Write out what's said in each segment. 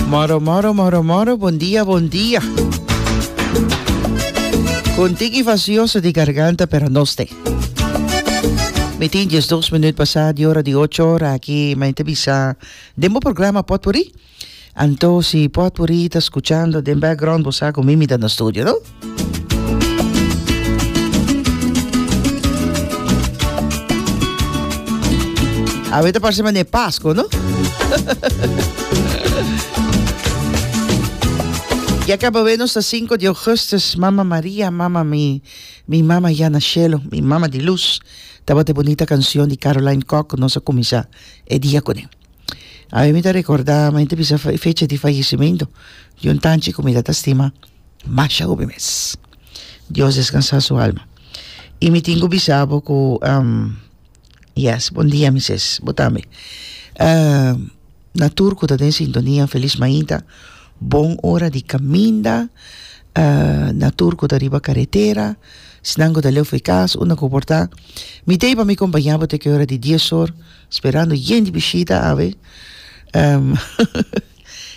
Moro, moro, moro, moro, bon dia, bon dia. Con tiki vacioso di garganta, pero no ste. Mi tin jes dos minuut pasa di ora di ocho ora aki, ma inte bisa den bo programa potpourri. Anto si potpourri ta scuchando den background, bo sa cu mimi ta na studio, no? Awe ta parse mane Pasko, no? Ya acaba we nos 5 de augustus, Mama Maria, Mama mi, mi Mama ya na cielo, mi Mama di luz. Tabata e bonita canción di Caroline Cock, nos a comienza e dia con e. Awe mi ta recorda, ma inte bisa fecha di fallecimiento, di un tanchi cu mi ta stima. masha hopi mes. Dios descansa su alma. Y mi tin cu bisabo cu um, yes, buen dia mi ses, bo tambe. Uh, na tur cu ta den sintonia, feliz mainta, bon hora di caminda, uh, na tur cu ta riba carretera, snan cu ta leu fe cas, una cu por ta. Mi tei pa mi compañabo te que hora di diez hor, sperando yen di bishita, ave. Um,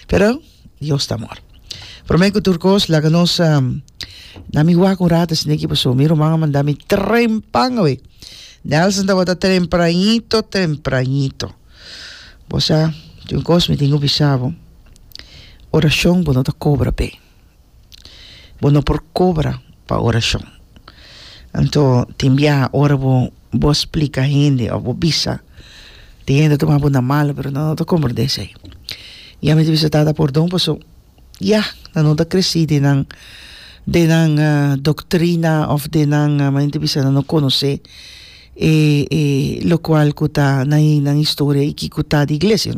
pero, Dios ta amor. Prome ku tur kos laga nos um, na mi wak un rato sin eki paso. Mi ruman a manda mi trempan awe. Nelson tabata tempranito, tempranito. Bosa, tin un kos mi tin ku bisa bo. Orashon bo no ta kobra pe. Bo no por kobra pa orashon. Anto tin biaha ora bo bo splika hende òf bo bisa, tin hende ta tuma bo na malo pero nan no ta komprendé esei. Yami ta bisa Tata pordon paso yah nan no ta kresí den nan den nan doktrina òf den nan a men ta bisa nan no konosé e e lokual ku ta na nan historia i kiko ta di iglesia.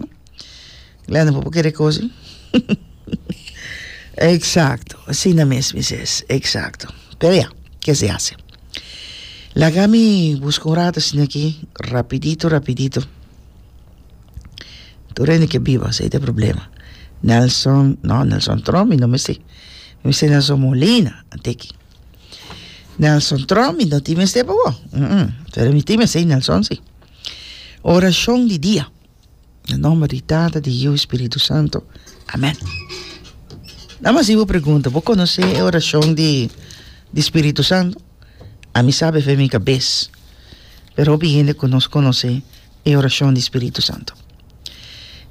Glenda, por kere cosi? Exacto, asina mes mis es, exacto. Pero ya, que se hace. Laga mi busca un rato asina aquí, rapidito, rapidito. Tur hende que biba, ese es problema. Nelson, no, Nelson Trom, mi no me sé. Mi sé Nelson Molina, anteki. Nelson Trom, mi no ti me sé, bobo. Mm -mm. Pero mi ti me sé, Nelson, sí. Oración di día. Na nomber di Tata, di Yiu, Spiritu Santo. Amen. Na mas ibo pregunta, bo conoce e oracion di, di Spiritu Santo? A mi sabe fe mi cabez. Pero hopi hende cu nos conoce e oracion di Spiritu Santo.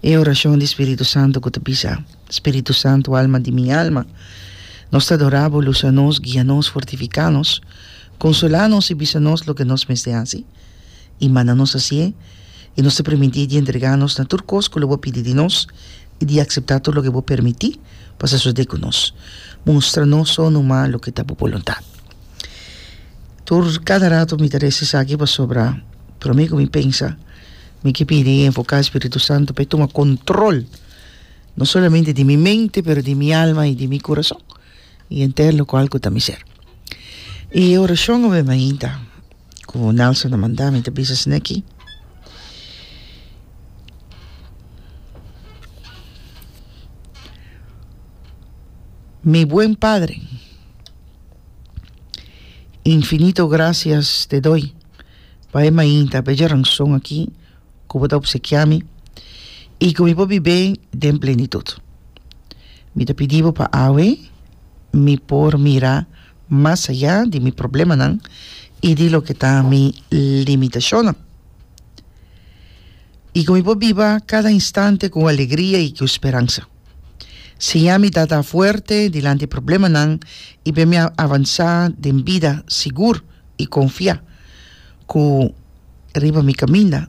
E oracion di Spiritu Santo cu ta bisa, Spiritu Santo, alma di mi alma, nos ta adora bo, lusa nos, guia nos, fortifica nos, consola nos y bisa nos loke nos mester haci. i manda nos hasié, i nos ta permití di entregá nos na tur kos ku lo bo pidi di nos i di akseptá tur loke bo permití pa sosodé ku nos. Mustra nos so numa loke ta bo boluntat. Tur kada ratu mi ta resa esaki pasobra promé ku mi pensa mi ke pidi i enfoká e spiritu santu pa e tuma kontrol no solamente di mi mente pero di mi alma i di mi kurason. I henter lo kual ku ta miser. I e orashon awor mi mainta ku Nelson a manda mi ta bisa esei aki, Mi buen Padre, infinito grasias te doi pa e mainta pa e djaranson aki. ku bo ta opsekiá mi i ku mi por bib'é den plenitut. Mi ta pidi bo pa awe mi por mira mas ayá di mi problemanan i di loke ta mi limitashonnan i ku mi por biba kada instante ku alegria i ku speransa. Siña mi tata fuerte dilanti e problemanan i ben mi avansá den bida sigur i konfiá. Ku riba mi kaminda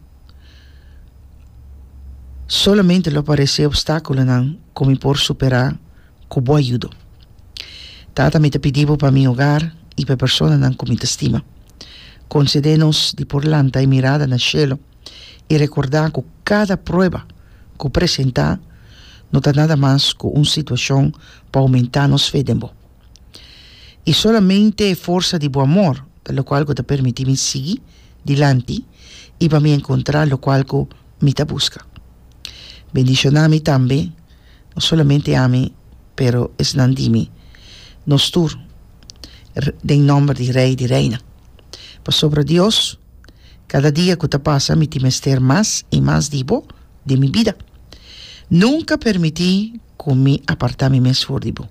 solamente lo aparesé opstákulonan ku mi por superá ku bo ayudo. Tata, mi ta pidi bo pa mi hogar i pa e personanan ku mi ta stima. Konsedé nos di por lanta e mirada na shelu i rekordá ku kada prueba ku presentá no ta nada mas ku un situashon pa oumentá nos fe den bo. I solamente e forsa di bo amor ta lokual ku ta permití mi sigui dilanti i pa mi enkontrá lokual ku mi ta buska. Bendishoná mi tambe, no solamente ami, pero esnan di mi, nos tur, den nòmber di Rei di Reina. Pasobra Dios, kada dia ku ta pasa mi tin mester mas i mas di bo den mi bida. Nunka permití ku mi apartá mi mes for di bo.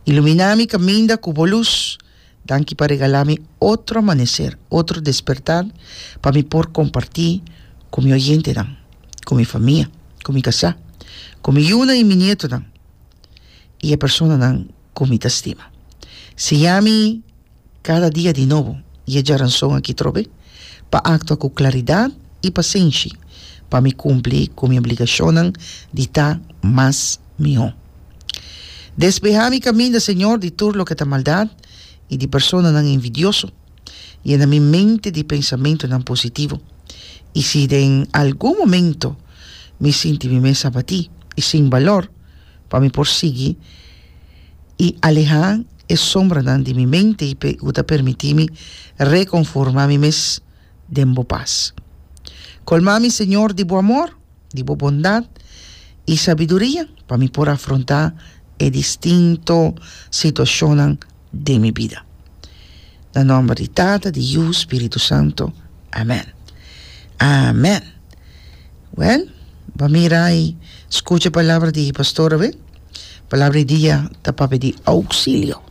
Ilumina mi caminda cu bo luz. Danki pa regala mi otro amanecer, otro despertar pa mi por comparti cu mi oyentenan, cu mi famia, cu mi casá, cu mi yunan y mi nietonan y e personanan cu mi ta stima. Siña mi. Kada dia di nobo i e djaranson aki trobe, pa aktua ku klaridat i pasenshi, pa mi kumpli ku mi obligashonnan di ta mas mihó. Despehá mi kaminda, Señor, di tur loke ta maldat i di personanan envidioso. Yena mi mente di pensamentunan positivo. I si den algun momento mi sinti mi mes abatí i sin balor, pa mi por sigui, i alehá e sombranan di mi mente i p'e ku ta permití mi rekonformá mi mes den bo pas. Kolmá mi, Señor, di bo amor, di bo bondat i sabiduria pa mi por afrontá e distinto situashonnan den mi bida. Na nomber di Tata, di Yu, Spiritu Santo. Amen. Amen. Well, bo a mira y scucha e palabra di pastor awe. Palabra di dia ta pa pidi auxilio.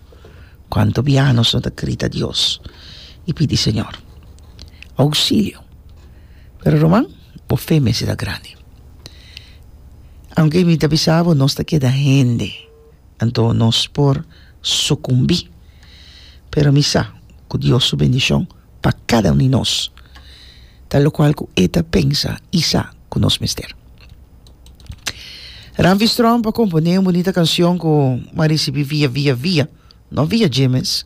Cuanto bia nos no ta grita Dios y pidi Señor auxilio. Pero Roman, bo fe mester ta grandi. Aunke mi ta bisa bo, nos ta keda hende. anto nos por sukumbí. Pero mi sa ku Dios su bendishon pa kada un di nos ta lokual ku e ta pensa i sa ku nos mester. Ramfis Tromp a komponé un bunita kanshon ku bo a risibí via via via, no via Jimes.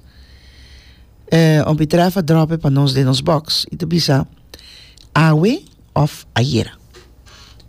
E hopi trèf a dròp'e pa nos den nos bòks i ta bisa, Awe òf ayera?